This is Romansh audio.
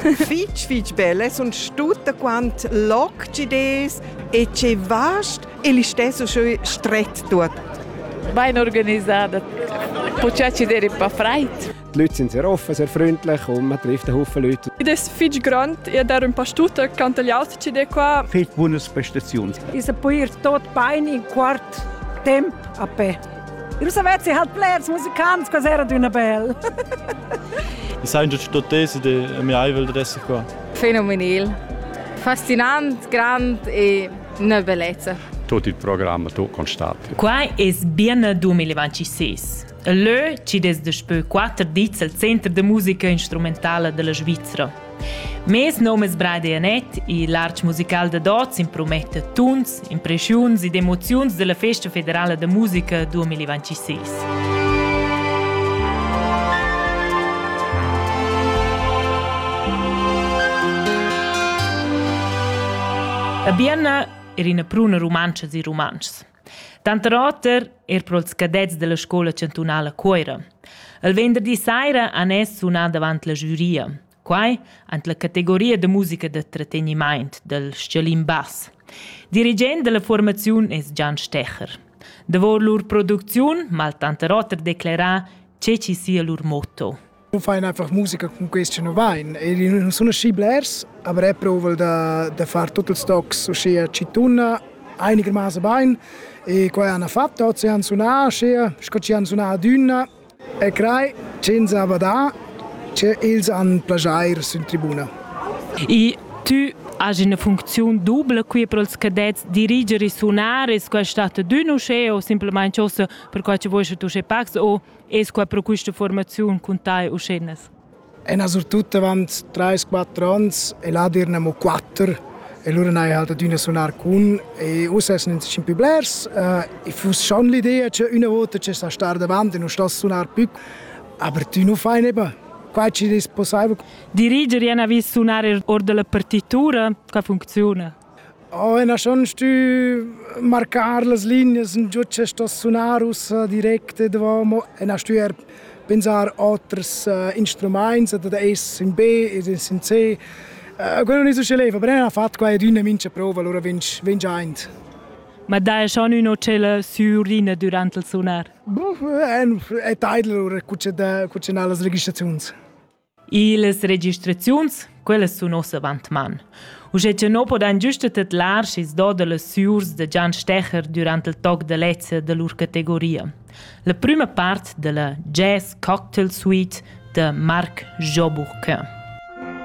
fitg fitg bella sono tutta quant logides e che vast e li stesso schön stret tut. Bein organisada. Počači der pa freit. Die Leute sind sehr offen, sehr freundlich und man trifft einen Haufen Leute. Das ist viel Grund, ich darf ein paar Stuten, kann die Leute zu dir kommen. Viel Bundesbestations. Ich bin tot bein in Quart Temp a pé. Io savessi halt plairs musicants, quas era d'una bel. I sajan già tutte tesi de mia aivel da essere qua. Fenomenal. Fascinant, grand e una bellezza. Tot il programma tu constati. Qua es biene 2026. Leu ci des daspö quatter dis al Center de musica instrumentala della Svizzera. Mes nom es Brady Annett, il arch musical da Dots imprometta tuns, impreschiuns ed emoziuns della Festa federala da musica 2026. A Bienna er ina pruna rumantscha e rumantschs. Tanter oter er pro ils cadets della scoula chantunala Cuoira. Il venderdi saira han es sunà davant la giuria. Quai ant la categoria da musica da tratteniment del Scialin Bass. Dirigent della formaziun es Gian Stecher. Davor lur producziun mal tanter oter declerà che ci sia lur motto. nu fain einfach musica cun quist chi nu vain. E i nun sun aschi blers, aber e prouval da, da far tuot ils tocs uschia chi tunna einigermaßen bain. E quai han fatto, oz han sunà uschia, sco chi han sunà adüna. E crei ch'ins ha badà che ils han plagiair sün tribuna. E tu hai una funzione double qui per els cadets dirigere e sunar e questo è stato d'un usceo semplicemente per quasi vuoi tu sei pax o Es qua pro quista formaziun cun tai uschennas? Ena surtut avant 3-4 ans e là dirna mo 4 e lura n'hai halt adüna sunar cun e uss es nin tschin pü blers uh, e fuss schon l'idea che üna vota che sa star davant e non sta sunar più, aber tu nu fai neba. Quai ci è possibile. Diriger è vis sunar or della partitura, che funziona? Oh, ei n'ha schon stü marcar las lignas in giò che sto sunar ussa direct e davò, mo e n'ha stü eir pensar oters instrumaints, ad ad es in B ed in C. Quello nun es usché leva, però ella ha fat quai ed ün e mincha prova, alura vegn vegn giaint. Ma dai schon ün tschella sü Urina durant il sunar? Boh, è taidl lura cucciar las registraziuns. Iles registraziuns, quellas sun ossa avantman. Uschè cha no podan güsta tedlar schi's do da las süurs da Gian Stecher durant il toc da lezza da lur categoria. La prüma part da la Jazz Cocktail Suite da Marc Joburg.